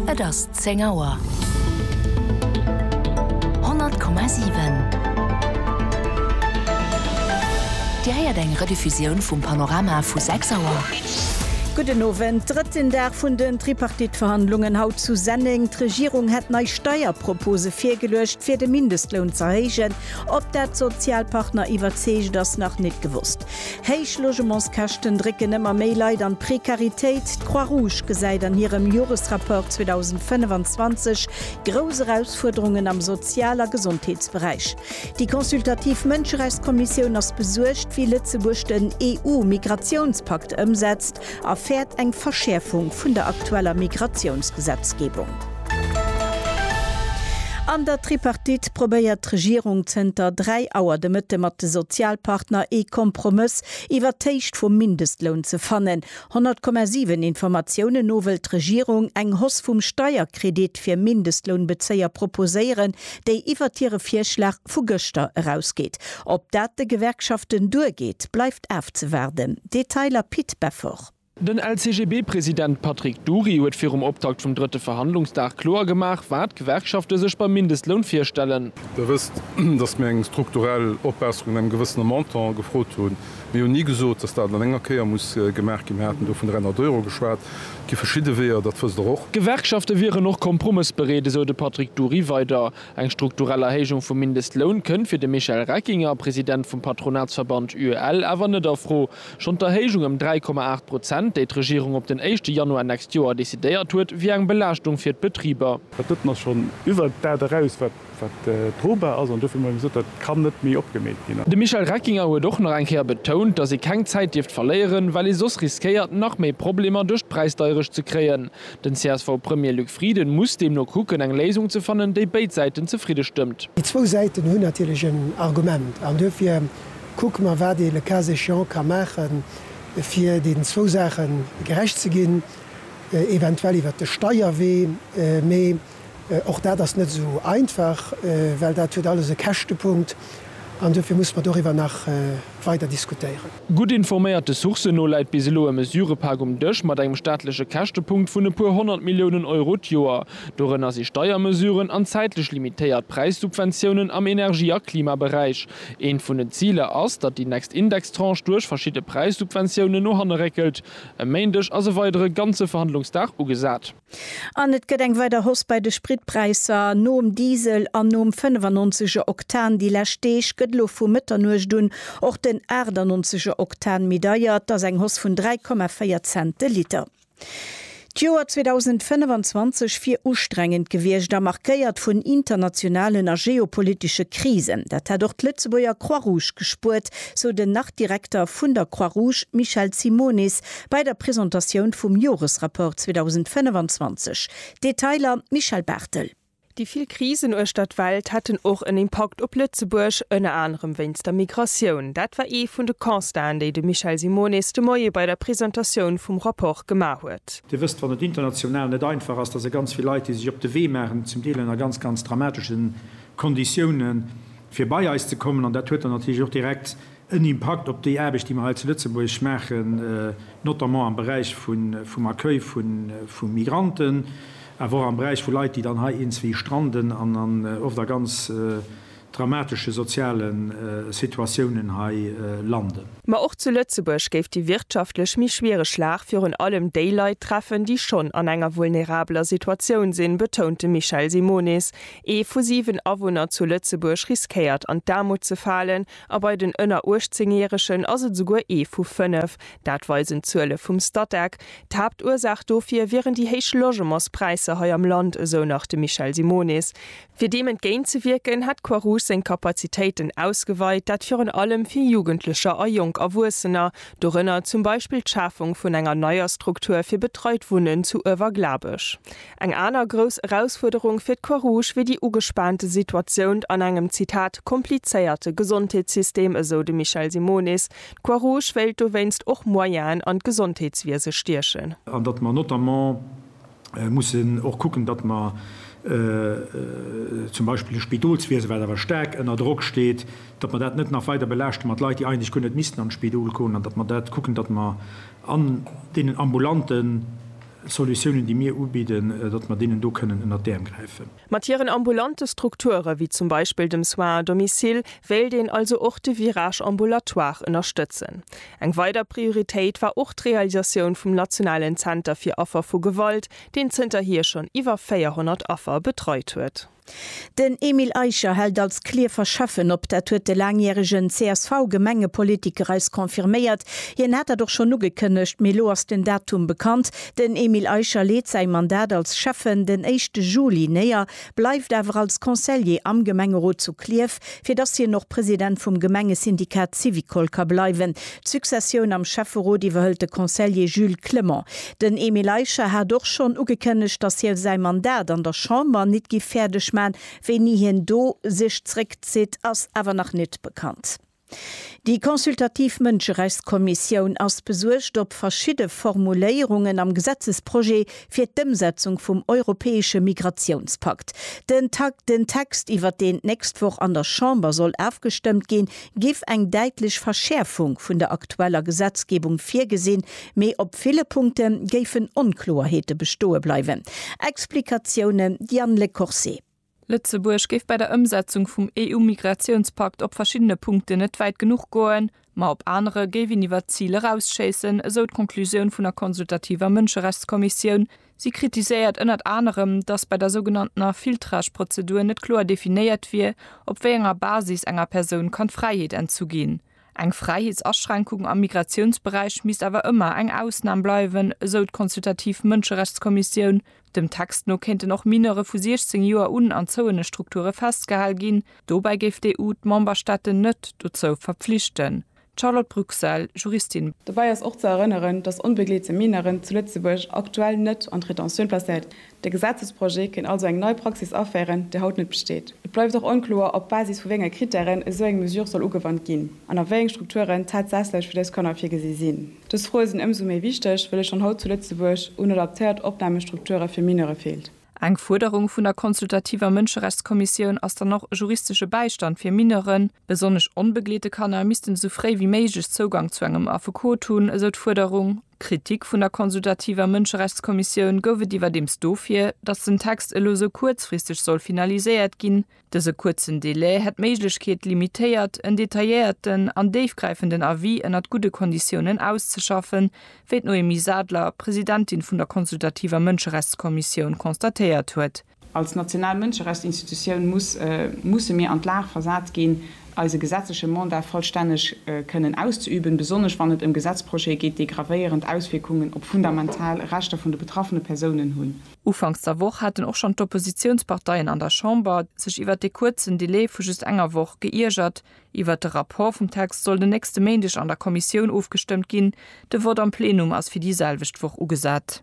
Et ass zéng Auer. 100,7. Dir héiert eng Rediffusioun vum Panorama vu sechs Auer. Gudden Owend. Drëtten Dag vun den Tripartite-Verhandlungen haut zu Senneng. D'Regierung hätt nei Steierpropose virgeluecht, fir de Mindestloun z'erhéijen. Ob dat d'Sozialpartner iwwerzeegt, ass nach nit gewosst. Héich Logementskäschten drécken ëmmer méi Leit an d'Prekaritéit. D'Croix-Rouge gesäit an hirem Joresrapport 2025 grouss Erausfuerderungen am Sozial a Gesondheetsberäich. Déi consultativ Mënscherechtskommissioun ass besuergt, wéi Lëtzebuerg den EU-Migratiounspakt ëmsetzt. Erfäert eng Verschäerfung vun der aktueller Migratiounsgesetzgebung. An der Tripartite probéiert d'Regierung zënter 3 Auer de Mëtte mat de Sozialpartner ee Kompromëss iwwert d'Héicht vum Mindestloun ze fannen. 100,7 Informatiounen no wëllt d'Regierung eng Hausse vum Steierkredit fir Mindestlounbezéier proposéieren, déi iwwert hire Virschlag vu gëschter erausgeet. Ob dat de Gewerkschaften duergeet, bleift afzewaarden. Detailer Pit Beffort. Den LCGB-President Patrick Dury huet virum Optakt vum drëtte Verhandlungsdag kloer gemaach, wat d'Gewerkschafte sech beim Mindestloun virstellen. Der wësst, datt mir eng strukturell Opbesserung an engem gewëssene Montant gefrot hunn. Mir hunn ni gesot, datt dat an enger Kéier muss gemaach ginn. Mir haten do vun 300 Euro geschwat. gi verschidde Weeër, dat wësst Der och. D'Gewerkschafte wieren och kompromëssbereet, esou de Patrick Dury weider. Eng strukturell Erhéijung vum Mindestloun kënnt fir de Michel Reckinger, President vum Patronatsverband UEL, awer net a Fro. Schonn d'Erhéijung ëm 3,8 Prozent, déi d'Regierung op den éischte Januar nächst Joer decidéiert huet, wier eng Belaaschtung fir d'Betriber. Dat drëtten ass schonn iwwert dat eraus, wat Wat drobar ass, an dofir hu mer eben gesot, dat kann net méi opgemeet ginn. De Michel Reckinger huet och nach eng Kéier betount, datt ee keng Zäit dierft verléieren, well ee soss riskéiert, nach méi Problemer duerch d'Präisdeierecht ze kréien. Den CSV-Premier Luc Frieden muss deemno kucken, eng Léisung ze fannen, déi béid Säiten zefridde stëmmt. Déi zwou Säiten hunn natierlech en Argument an duerfir kucke mer, wat ee le cas échéant ka maache fir deenen zwou Saache gerecht ze ginn, eventuell iwwert de Steierwee. Mee Och dat ass net esou einfach, well dat huet alles e Käschtepunkt, an dofir musse mer doriwwer nach weider diskutéieren. Gutt informéierte Sourcen no läit bis elo e Mesurëpak um Dësch mat engem staatleche Käschtepunkt vun e puer honnert Milliounen Euro d'Joer. Dorënner si Steiermesuren an zäitlech limitéiert Präissubventiounen am Energie a Klimaberäich. Eent vun den Ziler ass, datt déi nächst Indextranche duerch verschidde Präissubventiounen no hanne réckelt. E Méindeg ass e weidere ganze Verhandlungsdag ugesat. An et gëtt eng weider Hausse bei de Spritpräisser. Nom Diesel an nom 95 er Oktan déi lescht Deeg, gëtt elo vu Mëtternuecht un och den 98 er Oktan méi deier. Et ass eng Hausse vun 3,4 Cent de Liter. D'Joer 2025 wier ustrengend gewiescht a markéiert vun internationalen a geopolitesche Krisen. Dat hätt och d'Lëtzebuerger Croix-Rouge gespuert, sou den nach-Direkter vun der Croix-Rouge Michel Simonis Bei der Presentatioun vum Joresrapport 2025. Detailer Michèle Barthel. Déi vill Krisen uechter d'Welt hätten och en Impakt op Lëtzebuerg, ënner anerem wéinst der Migratioun. Dat war ee vun de Constaten, déi de Michel Simonis de Moie bei der Presentatioun vum Rapport gemaach huet. Dir wësst, wann et international net einfach ass, da si ganz vill Leit, déi sech op de Wee maachen, zum Deel ënner ganz, ganz dramatesche Konditiounen, fir bei eis ze kommen. An dat huet dann natierlech och direkt en Impakt op déi Aarbecht, déi mer hei zu Lëtzebuerg maachen, notamment am Beräich vum Accueil vu Migranten, awer och am Beräich vu Leit, déi dann hei eenzwee stranden an an oft a ganz dramatesche soziale Situatiounen hei landen. Ma och zu Lëtzebuerg géif déi wirtschaftlech méi schwiereg Lag virun allem déi Leit treffen, déi schonn an enger vulnerabeler Situatioun sinn, betount de Michel Simonis. Ee vu siwen Awunner zu Lëtzebuerg riskéiert an d'Aarmut ze falen, A bei den ënner 18 Järegen ass et esouguer ee vu fënnef. Dat weisen d'Zuele vum Statec. D'Haaptursaach dofir wieren déi héich Logementspräisser hei am Land, esou nach de Michel Simonis. Fir deem entgéintzewierken, hätt d'Croix Rouge seng Kapazitéiten ausgeweit, dat virun allem fir Jugendlecher a jonk Erwuessener, dorënner zum Beispill d'Schafung vun enger neier Struktur fir betreit Wunnen zu Uewerglabech. Eng aner grouss Erausfuerderung fir d'Croix-Rouge wier déi ugespaante Situatiount an engem, Zitat, komplizéierte Gesondheetssystem, esou de Michel Simonis. D'Croix-Rouge wéilt dowéinst och Moyenen an d'Gesondheetswiese stiechen. An datt mer notamment mussen och kucken, datt mer zum Beispill de Spidolswiese, wat awer staark ënner Drock steet, datt mer dat net nach weider belaaschte mat Leit, déi eigentlech guer net missten an d'Spidol goen, an datt mer dat kucken, datt mer an deenen ambulanten, Solutiounen, déi mir ubidden, datt mer deenen do kënnen ënnert d'Äerm gräifen. Mat hiren ambulante Strukture wéi zum Beispill dem Soins à domicile wéilt een also och de Virage ambulatoire ënnerstëtzen. Eng weider Prioritéit war och d'Realisatioun vum nationalen Zenter fir Affer vu Gewalt, deen zënterhier schonn iwwer 400 Affer betreit huet. Den Emile Eicher hält als Clierf verschaffen op. Dat huet de laangjäregen CSV-Gemengepolitiker eis confirméiert. Hien hat dat och schonn ugekënnegt, mee elo ass den Datum bekannt. Den Emile Eicher leet säi Mandat als Schäffen den éischte Juli néier, bleift awer als Conseiller am Gemengerot zu Clierf, fir datt hien och President vum Gemengesyndikat Syvicol ka bleiwen. D'Successioun am Schäfferot iwwerhëlt de Conseiller Jules Clement. Den Emile Eicher hat och schonn ugekënnegt, dass hie säi Mandat an der Chamber nit giff fäerdeg man. Wéini hien do sech zréckzitt, ass awer nach nit bekannt. Déi consultativ Mënscherechtskommissioun ass besuergt op verschidde Formuléierungen am Gesetzesprojet fir d'Ëmsetzung vum europäesche Migratiounspakt. Den Text, iwwert deen d'nächst Woch an der Chamber soll afgestëmmt ginn, giff eng däitlech Verschäerfung vun der aktueller Gesetzgebung virgesinn, Mee op ville Punkte géifen Onkloerheete bestoe bleiwen. Explikatioune Diane Le Corset. Lëtzebuerg géif bei der Ëmsetzung vum EU-Migratiounspakt op verschiddene Punkten net wäit genuch goen, ma op anere géif een iwwert d'Zil erausschéissen, esou d'Conclusioun vun der consultativer Mënscherechtskommissioun. Si kritiséiert ënnert anerem, datt bei der sougenanntener Filtrage-Prozedur net kloer definéiert wier, op wéi enger Basis enger Persoun kann d'Fräiheet entzu ginn. Eng Fräiheetsaschränkung am Migratiounsberäich misst awer ëmmer eng Ausnam bleiwen, esou d'consultativ Mënscherechtskommissioun. Dem Text no kéinten och Mineure vu 16 Joer un an zouene Strukture festgehal ginn. Dobäi géif d'EU d'Memberstaaten net dozou verpflichten. D'Charlotte Bruxelles, Juristin. Dobäi ass och ze erënneren, datt onbegleete Mineuren zu Lëtzebuerg aktuell net an d'Rétention placéiert De Gesetzesprojet kéint also eng nei Praxis aféieren, déi haut net besteet. Et bleift och onkloer, op Basis vu wéi enge Krittären esou eng Mesure soll ugewannt ginn an a wéi eng Strukturen tatsächlech fir dës Kanner virgesi sinn. Dës Froe sinn ëmsou méi wichteg, wëll et schonn haut zu Lëtzebuerg un adaptéiert Opnahmestrukture fir Mineure feelt. Eng Fuerderung vun der consultativer Mënscherechtskommissioun ass dann och, juristesche Bäistand fir Mineuren. Besonnesch onbegleete Kanner missten esou fréi wéi méiglech Zougang zu engem Affekot hunn, esou d'Fuerderung. Kritik vun der consultativer Mënscherechtskommissioun gouf et iwwerdeems dofir, datt den Text elo sou kuerzfristeg soll finaliséiert ginn. Dëse kuerzen Delai hätt d'Méiglechkeet limitéiert, en detailléierten an déifgräifenden Avis ënnert gudde Konditiounen auszeschaffen, wéi d'Noémie Sadler, Presidentin vun der consultativer Mënscherechtskommissioun, constatéiert huet. Als national Mënscherechtsinstitutioun muss, musse mir an d'Lag versat ginn, eise gesetzleche Mandat vollstänneg kënnen auszeüben, besonnesch wann et ëm Gesetzprojete geet, déi gravéierend Auswierkungen op fundamental Rechter vun de betraffene Persounen hunn. Ufanks der Woch haten och schonn d'Oppositiounsparteien an der Chamber sech iwwert dee kuerzen Delai vu just enger Woch geiergert. Iwwert de Rapport vum Text soll den nächste Méindeg an der Kommissioun ofgestëmmt ginn, de Vott am Plenum ass fir déi selwecht Woch ugesat.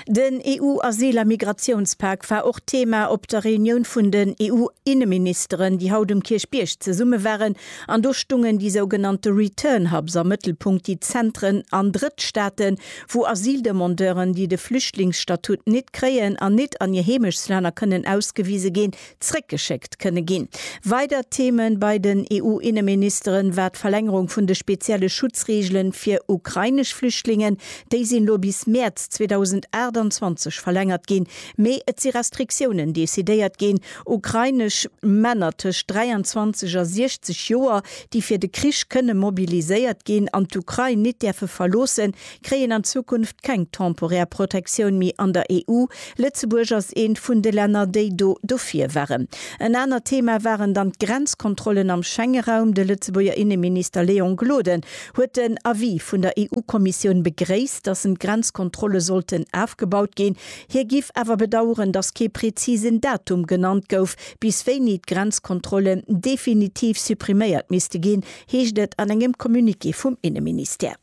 Den EU-Asyl a Migratiounspak war och Thema op der Reunioun vun den EU-Inneministeren, déi haut um Kierchbierg zesumme waren. An do stungen déi sougenannte Return Hubs am Mëttelpunkt, déi Zentren an Drëttstaaten, wou Asyldemandeuren, déi de Flüchtlingsstatut nit kréien an nit an hir Heemechtsländer kënnen ausgewise ginn, zréckgeschéckt kënne ginn. Weider Theme bei den EU-Inneministere war d'Verlängerung vun de spezielle Schutzreegele fir ukrainesch Flüchtlingen. Déi sinn elo bis Mäerz 2028 verlängert ginn, mee et si Restriktiounen decidéiert ginn. Ukrainesch Männer tëscht 23 a 60 Joer, déi fir de Krich kënne mobiliséiert ginn an d'Ukrain nit däerfe verloossen, kréien an Zukunft keng temporär Protektioun méi an der EU. Lëtzebuerg ass eent vun de Länner, déi do dofir waren. En anert Thema waren dann d'Grenzkontrollen am Schengeraum. De Lëtzebuerger Inneminister Léon Gloden huet den Avis vun der EU-Kommissioun begréisst, datt en d'Grenzkontrolle sollten afgebaut ginn. Hie giff awer bedaueren, datt kee prezisen Datum genannt gouf, bis wéini d'Grenzkontrollen definitiv suppriméiert misste ginn, heescht et an engem Communiqué vum Inneministère.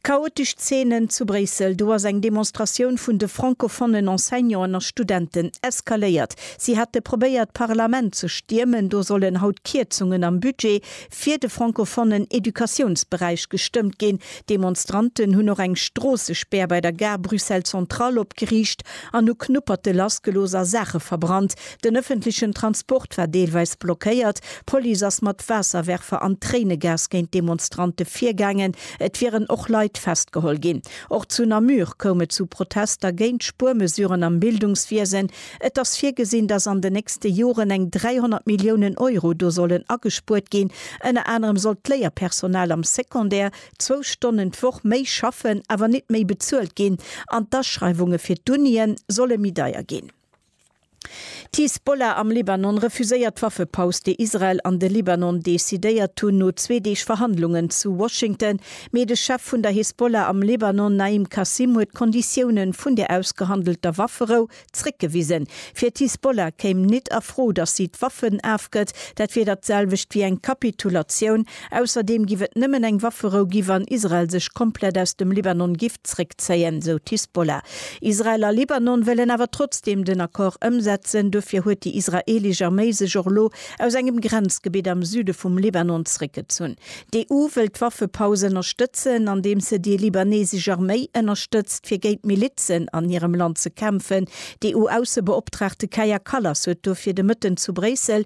Chaotesch Zeenen zu Bréissel, Do ass eng Demonstratioun vun de francofonnen Enseignanten a Studenten eskaléiert. Si hate probéiert d'Parlament ze stiermen. Do sollen haut Kierzungen am Budget fir de francofonnen Educatiounsberäich gestëmmt ginn. Demonstranten hunn och eng Stroossespär bei der Gare Bruxelles Centrale opgeriicht an hu Knupperte lassgelooss a Saache verbrannt. Den ëffentlechen Transport war deelweis blockéiert, d'Police ass mat Waasserwerfer an Tréinegas géint d'Demonstrante virgaangen, et wieren och Leit festgeholl ginn. Och zu Namur koum et zu Protester géint Spuermesuren am Bildungswiesen. Et ass virgesinn, datt an den nächste Joren eng 300 Milliounen Euro do sollen agespuert ginn. Ënner anerem sollt d'Léierpersonal am Secondaire zwou Stonnen d'Woch méi schaffen, awer nit méi bezuelt ginn an d'Aschreiwunge fir d'Unie solle méi deier ginn. D'Hisbollah am Libanon refuséiert d'Waffepaus, déi Israel an de Libanon decidéiert hunn no zwee Deeg Verhandlungen zu Washington. Mee de Chef vun der Hisbollah am Libanon, Naim Qassem, huet d'Konditiounen vun der ausgehandelter Wafferou zréckgewisen. Fir d'Hisbollah kéim nit a Fro, datt si d'Waffen afgëtt. Dat wier dat selwecht wéi eng Kapitulatioun. Ausserdeem giff et nëmmen eng Wafferou gi wann Israel sech komplett aus dem Libanon giff zréckzéien, sou d'Hisbollah. Israel a Libanon wëllen awer trotzdeem den Accord ëmsetzen. Dofir huet déi israeelesch Arméi sech och elo aus engem Grenzgebitt am Süde vum Libanon zréckgezunn. D'EU wëll d'Waffepaus ënnerstëtzen, andeems se déi libanesesch Arméi ënnerstëtzt fir géint d'Milizen an hirem Land ze kämpfen. D'EU-Aussebeoptraagte Kaja Kallas huet dofir de Mëtten zu Bréissel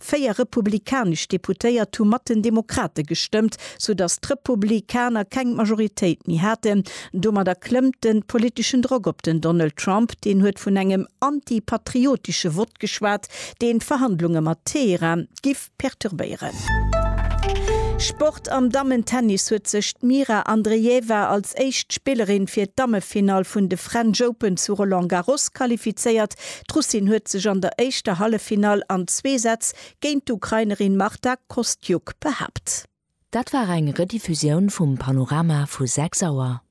Véier republikanesch Deputéiert hu mat den Demokrate gestëmmt, soudatt d'Republi kaner keng Majoritéit méi haten. Domadder klëmmt de politeschen Drock op den Donald Trump. Deen huet vun engem anti-patriotesche Vott geschwat, deen d'Verhandlunge mat Teheran giff perturbéieren. Sport, Am Dammentennis huet sech d'Mira Andreeva als éischt Spillerin fir d'Dammefinall vun de French Open zu Roland Garros qualifizéiert. D'Russin huet sech an der éischter Halleffinall an zwee Sätz géint d'Ukrainerin Marta Kostyuk behaapt. Dat war eng Rediffusioun vum Panorama vu 6 Auer.